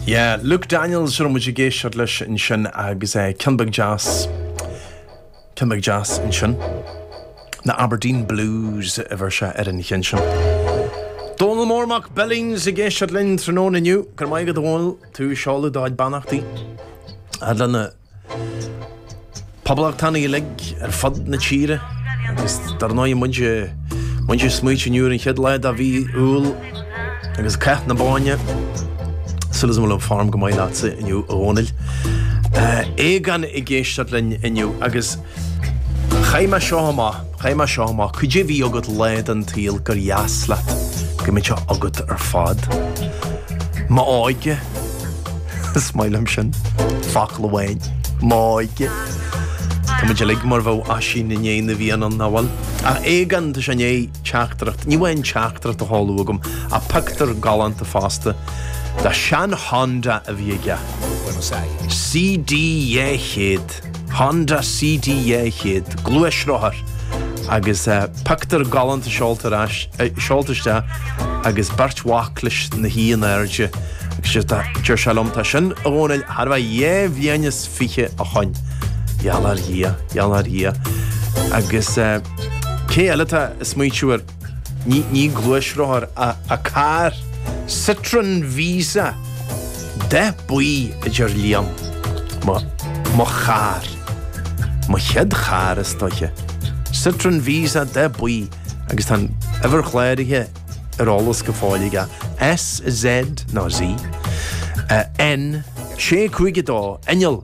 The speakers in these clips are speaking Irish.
Yeah, Luke Daniels a raibh muid ag éisteacht leis ansin agus é eh, ceann beag jazz, ceann beag jazz ansin. Na Aberdeen Blues a bheir sé ar an cheann sin. Dónal Mór Mac Billings ag éisteacht linn tráthnóna inniu, go raibh maith agat Dónal tú ag seoladh do chuid beannachtaí a fhad leis na Poblachtánaigh uilig ar fud na tíre agus dar ndóigh muid muid ag smaoitiú inniu ar an chéad lá de mhí Iúil agus Cath na Bóinne. Súil agam go bhfuil an form go maith leatsa inniu a Dhónaill. Aogán ag éisteacht linn inniu agus Chaith mé seo amach, chaith mé seo amach, cad é a bhí agat lá den tsaol gur dheas leat go mbeadh sé agat ar fad. M'óige! Is maith liom sin. Focal amháin. M'óige. Tá muid uilig mar bheadh Oisín i ndiaidh na bhFiann, nach bhfuil? Ach Aogán, tá sé i ndiaidh teachtaireacht, ní amháin teachtaireacht a sheoladh chugam ach pictiúr galánta fosta de shean Honda a bhí aige. CD 200. Honda CD200, gluaisrothar, agus pictiúr galánta seolta isteach agus beirt mhac leis 'na shuí in airde agus deir sé liom, 'Tá sin, a Dhónaill, thart fá dhá bhliain is fiche ó shoin. Gheall ar Dhia. Gheall ar Dhia. Agus cé eile atá ag smaoitiú ar. Ní gluaisrothar ach carr, Citroen Visa, dath buí a deir Liam, mo charr, mo chéad charr is dóiche. Citroen Visa, dath buí agus tá an uimhir chláraithe ar eolas go fóill aige, SZ nó Z, N652, inneall.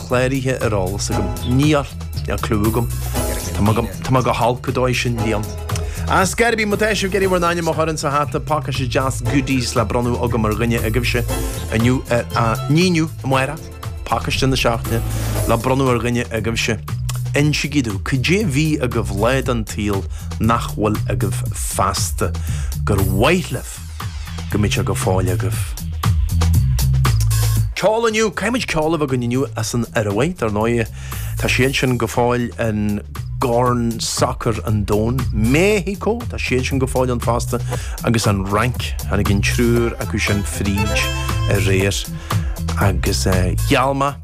cláraithe ar eolas agam. Níl clue agam. Tá mé go, tá mé go holc ar an dóigh sin bliain. Ah, ar scor ar bith, má tá sibh ag iarraidh bhur n-ainm a chur insa hata, pacáiste deas goodies le bronnadh agam ar dhuine agaibhse inniu ar a n-inniu amárach, pacáiste na seachtaine le bronnadh ar dhuine agaibhse. Insígí domh, cad é bhí agaibh lá den tsaol nach bhfuil agaibh feasta. Gur mhaith libh. go mbeadh sé go fóill agaibh. Ceol inniu! Caithfimid ceol a bheith againn inniu as an Iorua, dar ndóigh. Tá siad sin go fóill i gCorn Sacair an Domhain, México, tá siad sin go fóill ann fosta, agus an Fhrainc. Tháinig an triúr acu sin fríd aréir agus eh, gheal maith.